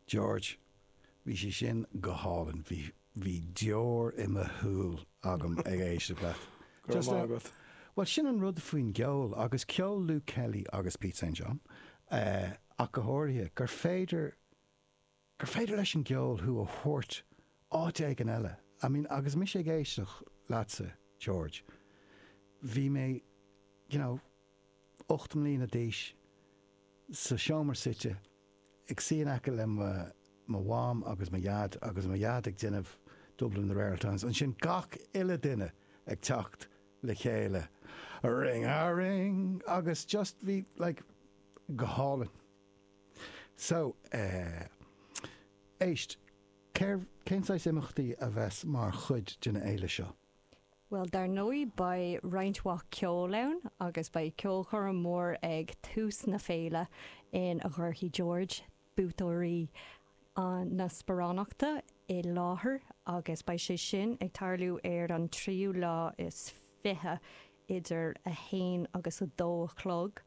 George, Bhí sé sin go hálainn, bhí, bhí deor i mo shúil agam ag éisteacht leat. Go raibh maith agat. Bhuel sin an rud faoin gceol agus ceol Luke Kelly agus Pete St. John ach go háirithe, gur féidir, gur féidir leis an gceol thú a thabhairt áit éigin eile. I mean agus mise ag éisteacht leatsa, George, bhí mé, you know, ocht mbliana d'aois, sa seomra suite, ag suí in aice le mo Mham agus mo Dhaid agus mo Dhaid ag déanamh Dublin in the Rare Ould Times. And ansin gach uile duine ag teacht le chéile, a ring a ring agus just bhí like, go hálainn. So eh éist, céard, cén saghas imeachtaí a bheas mar chuid den fhéile seo? Bhuel, dar ndóigh beidh roinnt mhaith ceoil ann agus beidh ceolchoirm mór ag tús na féile ina mbeidh George, buaiteoir na sparánachta i láthair agus beidh sé sin ag tarlú ar an 23ú idir 1 agus 2 a chlog.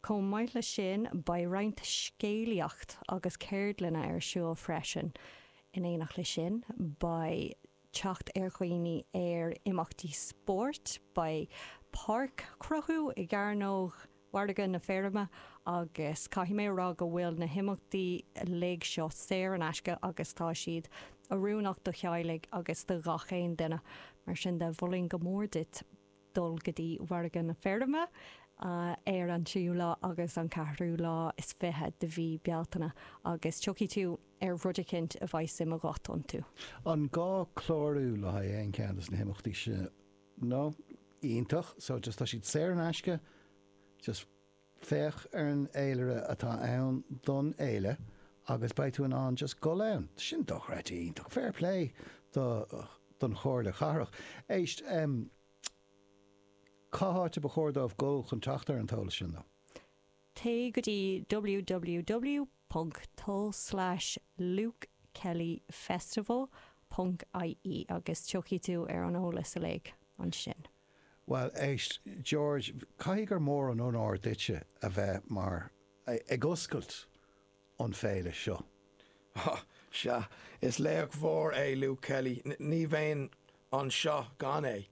Chomh maith leis sin beidh roinnt scéalaíocht agus ceardlanna ar siúl freisin. In éineacht leis sin beidh teacht ar dhaoine ar imeachtaí spóirt. Beidh páirc chruthú i gCearnóg Mhargadh na Feirme agus caithfidh mé a rá go bhfuil na himeachtaí uilig seo saor in aisce agus tá siad oiriúnach do theaghlaigh agus do 'chaon duine. Mar sin de, mholfainn go mór duit dul go dtí Margadh na Feirme ar an tríú lá agus an ceathrú lá is fiche de mhí Bealtaine agus tiocfaidh tú ar rud eicínt a bheidh suim agat iontu. An gá clárú le haghaidh aon cheann de na himeachtaí sin? No. Iontach. So just tá siad saor in aisce? Just Féach ar an fhéilire atá ann don fhéile agus beidh tú in ann just gul ann. Sin dochreidte iontach. Fair play do don Chomhairle Chathrach. Éist, em, cén áit ar ba chóir dóibh gul chun teacht ar an t-eolas sin nó? Téigh go dtí www ponc to slash lukekellyfestival ponc ie agus tiocfaidh tú ar an eolas uilig ansin. Bhuel, éist, George, caithfidh gur mór an onóir duitse a bheith mar, ag oscailt an Féile seo. Há! Sea, is laoch mhór é Luke Kelly. Ní bheinn anseo gan é.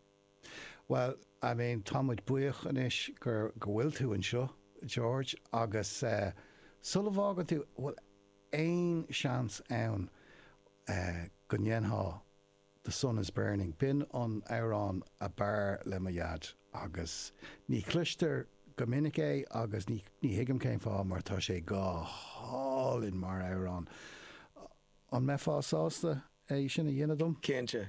Bhuel, I mean, tá muid buíoch anois gur, go bhfuil tú anseo, George, agus eh, sula bhfágann tú, bhfuil aon seans ann eh, go ndéanfá The sun is burning. B'in an amhrán a b'fhearr le mo dhaid agus ní chloistear go minic é agus ní ní thuigim cén fáth mar tá sé go hálainn mar amhrán. An mbeifeá sásta é sin a dhéanamh dom? Cinnte.